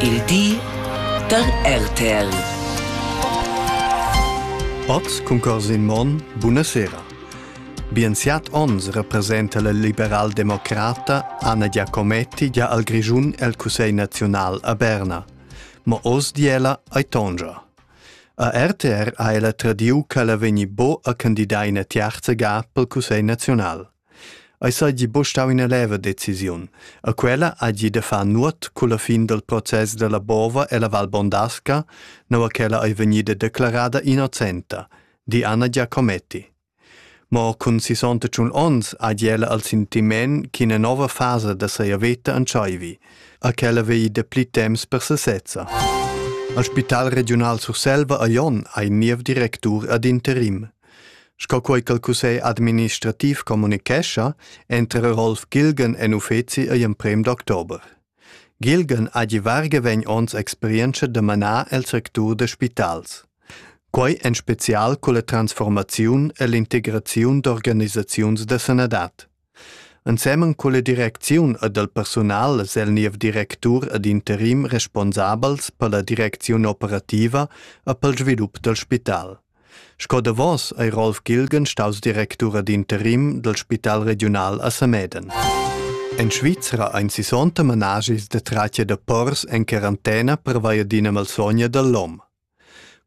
Il di da RTL. Oz cuncors in mon, buna sera. Bien siat ons representa la liberal-democrata Anna Giacometti gia al Grischun el Cussegl nazional a Berna. Ma oz di ella ai tongia. A RTR ha ella tradiu che ella vegni bo a candidar ina tiarza ga pel Cussegl nazional. Ei seigi buc stau ina leva decisiun, e quella hagi da far nuot culla fin dal process dalla Bova e la Val Bondasca, nua ch'ella ei vegnida declarada innocenta, di Anna Giacometti. Mo cun sissonta tschun onns hagi ella il sentiment ch'ina nova fasa da sia veta entscheivi e ch'ella vegli dapli temps per sesezza. Il Spital regiunal Surselva a Jon ha in niev directur ad interim. Sco quei ch'el cussegl administrativ communichescha, entra Rolf Gilgen en uffeci igl emprem d'october. Gilgen ha gi varga vegn ons experienza da manar el sectur da spitals. Quei en spezial culla transformaziun e l'integraziun d'organisaziuns da sanadad. Ensemen culla direcziun ed el persunal es el niev directur ed interim responsabels per la direcziun operativa e pel svilup dal spital. Sco davos ei Rolf Gilgen staus directur ed interim dal Spital regiunal a Sameden. En Svizra ein 60 managis de tracia de pors en quarantena pervia d'ina malsogna dall'om.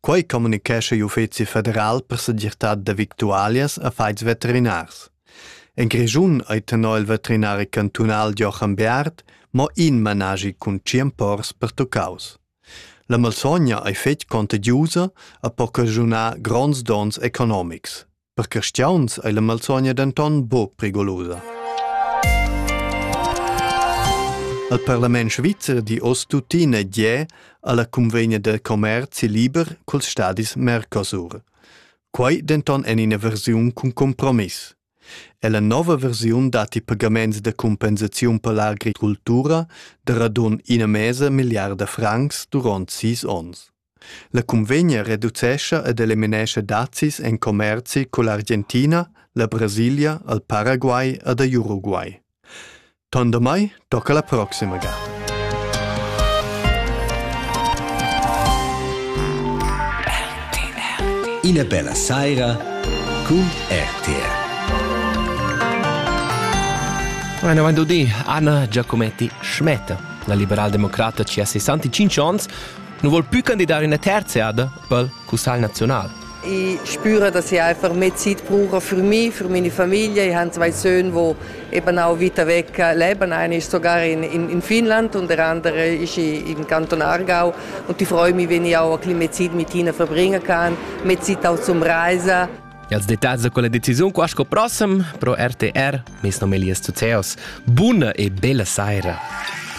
Quei communicescha l'Uffeci federal per segirtad da victualias affons veterinars. En Grischun ei tenor il veterinari cantunal Joachim Bearth mo in managi cun tschien pors pertuccaus. La malsogna ei fetg contagiusa e po caschunar gronds donns economics. Per cristiauns ei la malsogna denton buc prigolosa. Al parlament svizzer di oz tuttina gie alla convegna del commerci liber culs stadis Mercosur. Quei denton en ina versiun cun compromiss. E la nova versiun dat i pagaments de compensaziun per l'agricultura de radun ina mesa miliarda francs durant sis ons. La cunvegna reducescha ed eliminescha dazis en commerzi cull'Argentina, la Brasilia, al Paraguay ed a Uruguay. Ton damai tocca la proxima ga. Ina bella saira cun RTR. Eine avanti di, Anna Giacometti Schmette. La liberaldemocrata ci ha 65 ans nu vol plü candidar üna terza eada pel Cussagl naziunal. Ich spüre, dass ich einfach mehr Zeit brauche für mich, für meine Familie. Ich habe zwei Söhne, die eben auch weiter weg leben. Einer ist sogar in, in, in Finnland und der andere ist im Kanton Aargau. Und ich freue mich, wenn ich auch ein bisschen mehr Zeit mit ihnen verbringen kann, mehr Zeit auch zum Reisen. E als detalls da quella decisiun qua sco prossem pro RTR, mes nom è Elias Zuzeos. Buna e bella saira!